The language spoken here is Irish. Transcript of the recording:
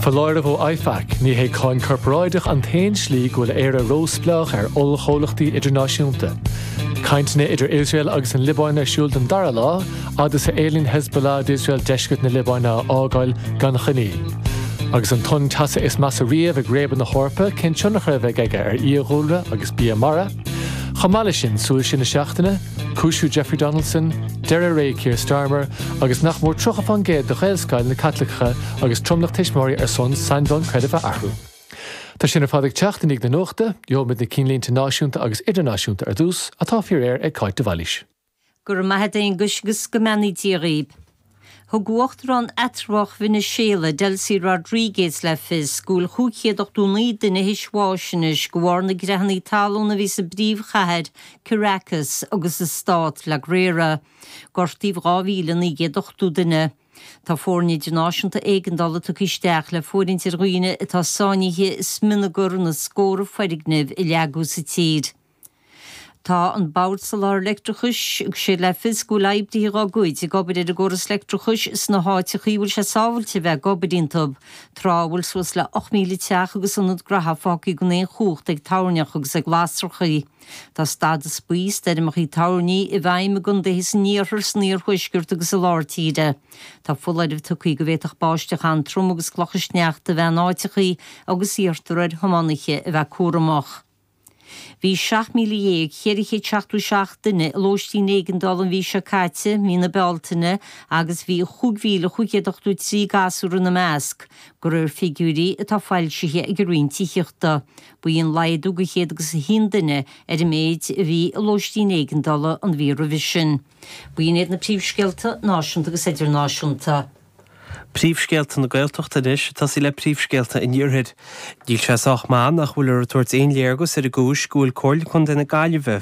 Foláireamh ó IFAC, Ní hé cáin corparáideach an t-aon slí go bhfuil Éire róspleách ar ollchomhlachtaí idirnáisiúnta. Cainteanna idir Iosrael agus an Liobáin ar siúl don dara lá fhad is a éilíonn Hezbollah d'Iosrael deisceart na Liobáine a fhágáil gan choinníoll. Agus an tonn teasa is measa riamh ag réabadh na hEorpa, cén tionchar a bheidh aige ar fhiadhúlra agus bia mara? Chomh maith leis sin, súil siar na seachtaine, Cúisiú Jeffrey Donaldson, deireadh ré Keir Starmer, agus nach mór 30 faoin gcéad de Ghaelscoileanna Caitliceacha agus tromlach tuismitheoirí ar son sainiúlacht creidimh a athrú. Tá sin ar fad ag teacht i ndiaidh na nuachta, gheobhaimid na cinnlínte náisiúnta agus idirnáisiúnta ar dtús, atá faoi réir ag Cáit de Bhailís. Go raibh maith 'ad Aonghuis 'gus go mbeannaí Dia dhaoib. Thug uachtarán eatramhach Veiniséala, Delcy Rodriguez le fios go bhfuil 589 duine théis bháis anois de bharr na gcreathanna talún a bhí sa bpríomhchathair, Caracas, agus sa stát, La Guaira. Gortaíodh 2,980 duine. Tá foirne idirnáisiúnta éigeandála tugtha isteach le fóirithint ar dhaoine atá sáinnithe i smionagar na scórtha foirgneamh a leagadh sa tír. Tá an bord soláthair leictreachais ag tabhairt le fios go bhfuil oibrithe dá gcuid ag obair ar an gcóras leictreachais sna háiteacha a bhfuil sé sábháilte a bheith ag obair iontu, tráth a bhfuil suas le 8,000 teach agus ionad graithe fágtha gan aon chumhacht ag toirneacha agus ag lasracha. Tá stádas buí stoirmeacha toirní i bhfeidhm i gcondaetha san iarthar, san iarthuaisceart agus i lár tíre. Tá foláireamh tugtha go bhféadfadh báisteach an-trom agus clocha sneachta a bheith in áiteacha agus iarrtar ar thiománaithe a bheith cúramach. Bhí 17,477 duine i lóistín éigeandála an mhí seo caite, mí na Bealtaine, agus bhí 5,583 gasúr ina measc, de réir figiúirí atá foilsithe ag an Roinn Tithíochta. B'ionann é agus laghdú de chéad agus a haon duine ar an méid a bhí i lóistín éigeandála an mhí roimhe sin. B'in iad na príomhscéalta náisiúnta agus idirnáisiúnta. Príomhscéalta na Gaeltachta anois, ag tosaí le príomhscéalta an Iarthair. Níl sé sách maith nach bhfuiltear ag tabhairt aon léargas ar an gcúis go bhfuil Comhairle Contae na Gaillimhe